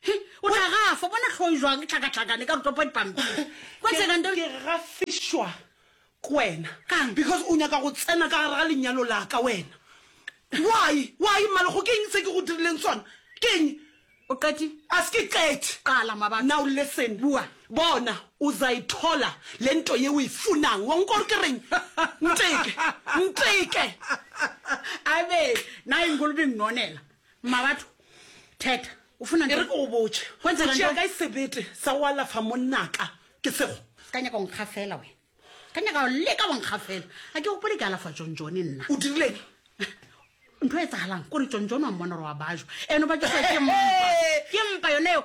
He, o tla gafa bona tlhoe jwang e tlhakatlhakane ka rutopa dipampiri kwa tshenande ke gafišwa ke wena Kang? because o nyaka go tsena ka gare ga lenyalo la ka wena why why mmalego ke eng se ke go dirileng sona ke eng o qeti a se ke qete qala mabaka now listen Bua. bona uzayithola le nto ye o e funang wa nkwa gore ke reng nteke nteke abe na ingolobing nonela Mmabatho, Theta, o funa ntho. E re ke go botše, o tšea kae sebete sa go alafa monnaka? Ke sego. Se ka nyaka go nkgafela wena. Se ka nyaka go leka go nkgafela. A ke gopole ke alafa Jonjone nna. O dirileng? Ntho e tsagalang kore Jonjone wa mmona gore wa bajwa. Eno ba ke sa ke mpa. Ke mpa yone eo.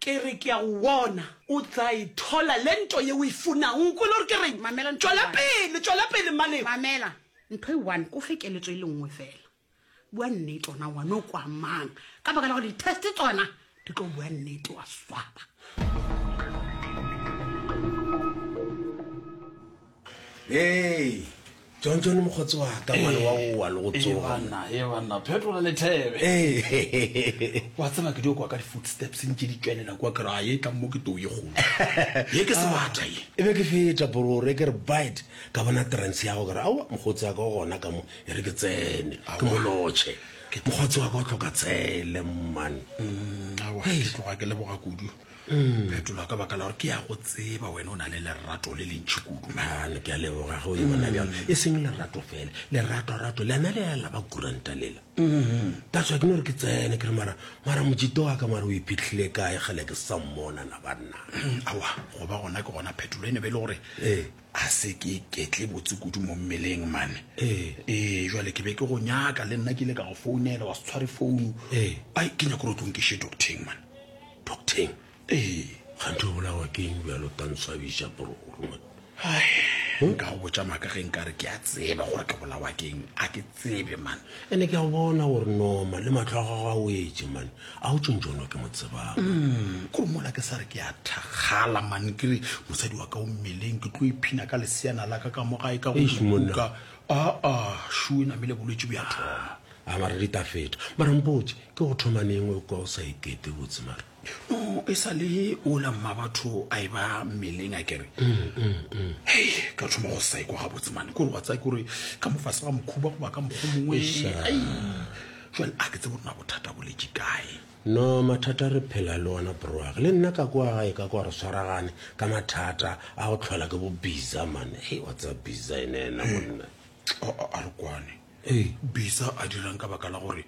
Ke re ke a go bona. O tla e thola le nto ye o e funago. O kwele gore ke reng? Mamela ntho e Tšwela one. pele, tšwela pele, Mmaleo. Mamela ntho e one, ko fe keletso e le nngwe fela. Bua nnete ona ngwana o kwa mang. Ka baka la gore di-test tsona di tlo bua nnete, wa swaba. ee john john mokgotsi wa ka ngwana wa oa le go ee tsoga banna ee banna phetola lethebe ee wa tseba ke dio kwa ka di-footsteps ntše di tšwelela kwa ke ra ye tla mo ke too ye kgolo ye ke sebata ye e be ke feta borore ke re bite ka bona trance ya go ke re aowa mokgotsi wa ka o gona ka mo e re ke tsene ke mo lotšhe mokgotsi wa ka o tlhoka tsele mmane Mm, aowa ke tloga ke leboga kudu mm. phetola ka baka la gore ke ya go tseba wena o na le lerato le lentšhi kudu mane ke a leboga ge o yona bjalo mm. e seng lerato fela leratorato lena le lela ba kuranta lela mm-hmm. ka tswa ke ne gore ke tsene ke re mara mara mojito wa ka mare o iphitlhile kae gele ke sa mmona na banna mm, awa go ba gona ke gona phetola e ne be e le gore ee a se ke ketle botse kudu mo mmeleng mane ee ee jale ke be ke go nyaka le nna ke ile ka go founela wa se tshware founu ee ai ke nyako re o tlong ke she docteng mane Docteng. Ee, gantho bolawa ke eng bjalo tantswabiša bro ruma? Hai, nka go botša maka ge nka re ke a tseba gore ke bolawa ke eng, a ke tsebe man. Ene ke a bona gore noma le matlho a gago a o etse man, a o tšontšono ke mo tsebang. Mm, kore mola ke sa re ke a thakgala man, ke re mosadi wa ka o mmeleng, ke tlo iphina ka leseana la ka ka mo gae ka go Eish, monna. kuka. Aa, shu e namile bolwetši bja thoma. A mara di ta feta. Mara mpotse, ke go thoma neng o kwa o sa ikete botse mara? No, e sa le ola mmabatho a e ba mmeleng a kere. Hei, ka thoma go sa ikwa gabotse mane. Kore wa tsaya kore ka mofase ga mokhuba goba ka mokgo mongwe. Eish, ah. Ai, jwale a ke tsebe gore na bothata bo letše kae. No, mathata re phela le ona bro wa ka. Le nna ka kwa gae ka kwa re swaragane ka mathata a go tlhola ke bo biza mane. Hei, wa tsaya biza ene ena monna. A, a, a re kwane. Ee. Bisa a dirang ka baka la gore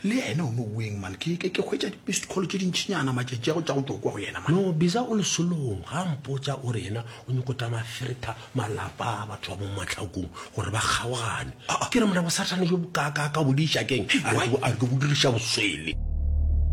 le ene o no weng man ke ke ke hwetša di-missed call tše dintšhinyana matšatši a go tša go tokwa go yena man. No, Bisa o lesolong ga a mpotša o re yena o nyoko tša mafirtha malapa a batho ba mo matlhakong gore ba kgaogane. Ke re mna bosathane jo bokaakaaka bo di iša keng? A re ke bo diriša boswele.